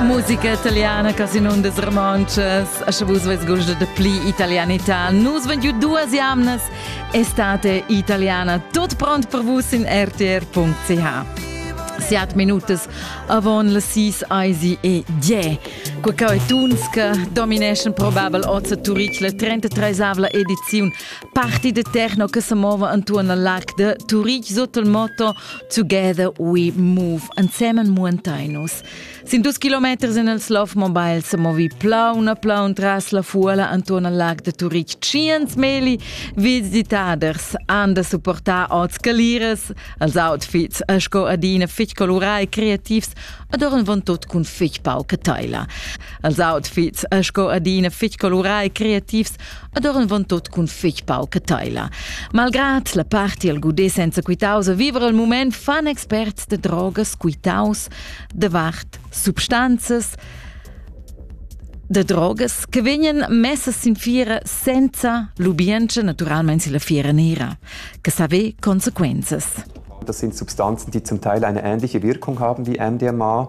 Musica italiana, Casino des Romances, a vus ves gusto de pli italianità. Nus vent ju duas jamnas, estate italiana, tot pront per vus in rtr.ch. Siat minutas avon le sis eisi e die. Qua cau è Tunska, Domination Probable Ozza Turich, la 33 ediziun Parti de techno che se mova intorno al larg de Turich sotto il motto Together we move ansemen muantainus. Sin dus kilometers in el Slow Mobile se movi plauna plaun tras la fuola intorno al larg de Turich cient meli visitaders han da supportar ots calires als outfits sco adina fich colorai e creativs adorn von tot cun fich pauca teila. Als outfits sco adina fich colorai e creativs ed eran van tot cun fetg pauca teila. Malgrad la parti al gudé senza quitaus a vivere al moment fan experts de drogas quitaus davart substanzas de drogas che vegnan messas sin fiera senza l'ubientscha naturalmente si la fiera nera, che sa ve conseguenzas. Das sind Substanzen, die zum Teil eine ähnliche Wirkung haben wie MDMA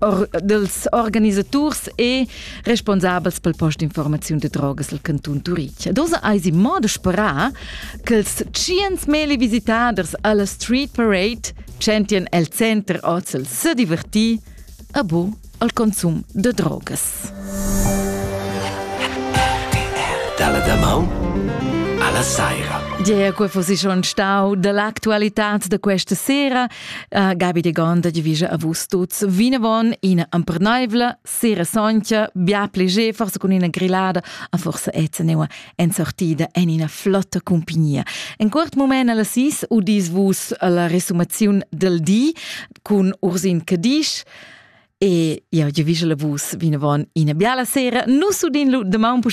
or, dels organisaturs e responsabels pel post d'informaziun de drogas al canton Turich. Dosa eis in modo sperà che els cients meli visitaders alla Street Parade centien el center Ozel se divertir a bo al consum de drogas. Dalla da maun alla saira. Dia, quei fossi schon stau dall'actualità da questa sera Uh, Gabi de Gonda divisa avus tuts vinavon ina emperneivla, sera soncha, bia pleger, forse con ina grillada, a forse etzeneua en sortida en ina flotta compagnia. En quart moment alla sis udis vus la resumaziun del di con Ursin Cadisch, E ja, je vise la vus vinavon ina biala sera. Nus udin lu de maun pus